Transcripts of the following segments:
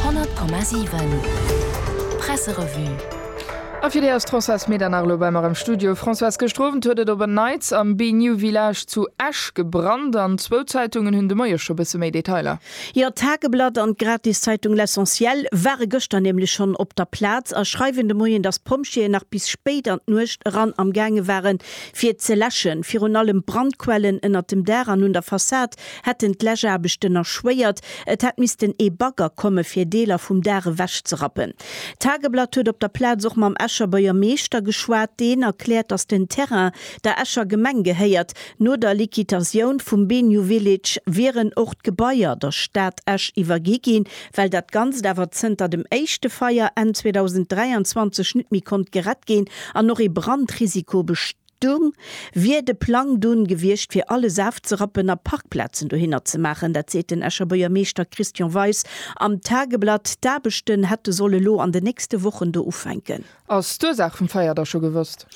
100,7 Presserevue A fir déi ass d'Françoise Medernach elo bei mer am Studio. Françoise, gëscht Owend huet et op en Neits am BeNew Village zu Esch gebrannt an zwou Zeitungen hunn de Moie scho bësse méi Detailer. Jo, d'Tageblatt an d'Gratiszeitung L'Essentiel ware gëschter nämlech schonn op der Plaz a schreiwen de Moien, dass d'Pompjeeën nach bis spéit an d'Nuecht eran amgaange waren, fir ze läschen. Virun allem Brandquellen ënnert dem Daach an un der Fassad hätten d'Läschaarbechten erschwéiert, et hätt missten ee Bagger komme fir Deeler vum Daach ewechzerappen. D'Tageblatt huet op der Plaz och mam Escher Buergermeeschter geschwat, deen erkläert, datt den Terrain der Escher Gemeng gehéiert. No der Liquitatioun vum Benyu Village wieren och d'Gebaier der Stad Esch iwwergi ginn. Well dat Ganzt awer zënter dem éischte Feier Enn 2023 net méi konnt gerett ginn an och ee Brandrisiko besteet, Dumm wier de Plang dunn gewiescht fir alles afzerappen a Parkplazen dohinner ze maachen. Dat seet den Escher Buergermeeschter Christian Weis am Tageblatt. D'Aarbechten hätte soll elo an de nächste Wochen do ufänken. Ass d'Ursaach vum Feier da scho gewosst?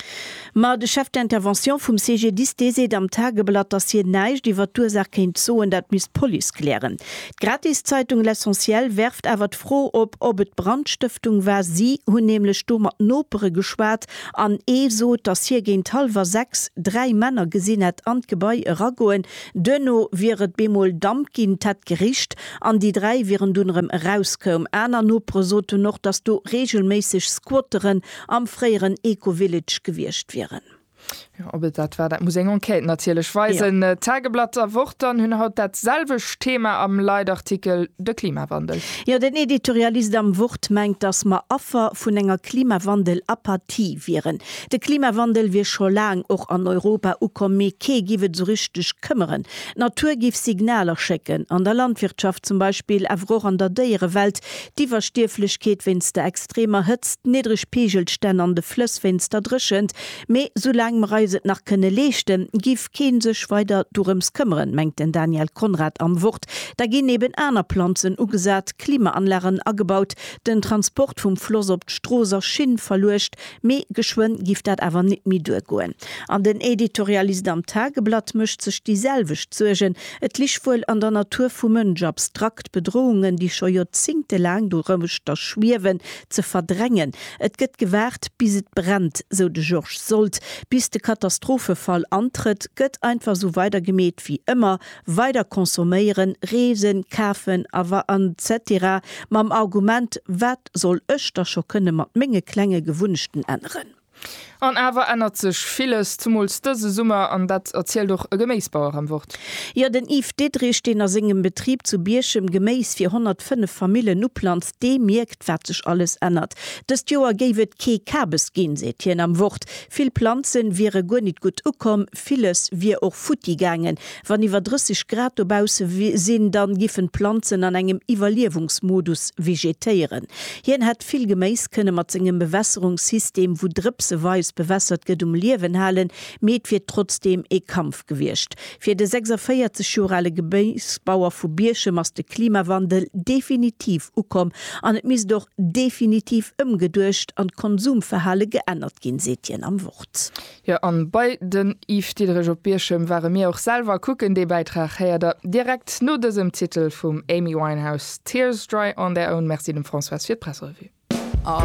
Ma de Chef d'intervention vum CGDIS, dee seet am Tageblatt, datt hien näischt iwwert d'Ursaach kéint soen, dat misst d'Police klären. D'Gratiszeitung L'Essentiel werft awer d'Fro op, ob et Brandstëftung war. Si hunn nämlech do mat Nopere geschwat, An ee sot, datt hie géint hallwer sechs dräi Männer gesinn hätt an d'Gebai eragoen. Duerno wier et bemol Damp ginn, d'hätt gericht an déi dräi wieren dunn erëm erauskoum. Aner Nopere soten och, datt do reegelméisseg Squatteren am fréieren Eco-Village gewiescht wieren. Jo, ob et dat war, dat muss eng Enquête natierlech weisen. Ja. D'Tageblatt a Wort dann hunn haut dat selwecht Thema am Leitartikel, de Klimawandel. Jo, den Editorialist am Wort mengt, datt mer Affer vun enger Klimawandel-Apathie wieren. De Klimawandel wier scho laang och an Europa ukomm, mee kee giff et esou richteg këmmeren. D'Natur giff Signaler schécken, an der Landwirtschaft zum Beispill, awer och an der Déierewelt, d'Iwwerstierflechkeet wéinst der extremer Hëtzt, d'niddreg Peegelstänn an de Flëss wéinst der Dréchent, Mee soulaang mer eis et nach kënne leeschten, giff keen sech weider dorëms këmmeren, mengt den Daniel Conrad am Wort. Da ginn eben aner Planzen ugesat, Klimaanlagen agebaut, den Transport vum Floss op d'Strooss a Schinn verluecht. Mee geschwënn giff dat awer nit méi duergoen. An den Editorialist am Tageblatt mécht sech déi selwecht Suergen. Et lig wuel an der Natur vum Mënsch, abstrakt Bedrohungen, déi scho joerzéngtelaang dorëmchter schwiewen, ze verdrängen. Et gëtt gewaart, bis et brennt, sou de Georges Sold. Bis de Katastrophefall antrëtt, gëtt einfach sou weidergemeet wéi ëmmer, weider consomméieren, reesen, kafen a wa an etc. Mam Argument, Wat soll ech da scho kënne mat menge klenge Gewunnechten änneren? An awer ännert sech villes, zemools dëse Summer, an dat erzielt och e Geméisbauer am Wort. Jo, den Yves Diderich, deen a sengem Betrib zu Bierchem Geméis fir 105 Famillen uplanzt, dee mierkt, wat sech alles ännert. Dëst Joer géif et kee Kabes ginn, seet hien am Wort. Vill Planze wiere guer nit gutt ukomm, Villes wier och futti gaangen. Wann iwwer 30 Grad dobausse sinn, da giffen d'Planzen an engem Iwwerliewungsmodus vegetéieren. Hien hätt vill Geméis kënne mat sengem Bewässerungssystem, wou drëpseweis bewässert gëtt, um Liewen halen, mee et wier trotzdeem ee Kampf gewiescht. Fir de 46 Joer ale Geméisbauer vu Bierchem ass de Klimawandel definitiv ukomm an et misst och definitiv ëmgeduecht an d'Konsumverhale geännert ginn, seet hien am Wort. Jo an bei den Yves Diederich op Bierchem ware mir och selwer kucken. Dee Bäitrag héiert der direkt no dësem Titel vum Amy Winehouse, Tears Dry On Their Own. Merci dem Françoise fir d'Pressrevue.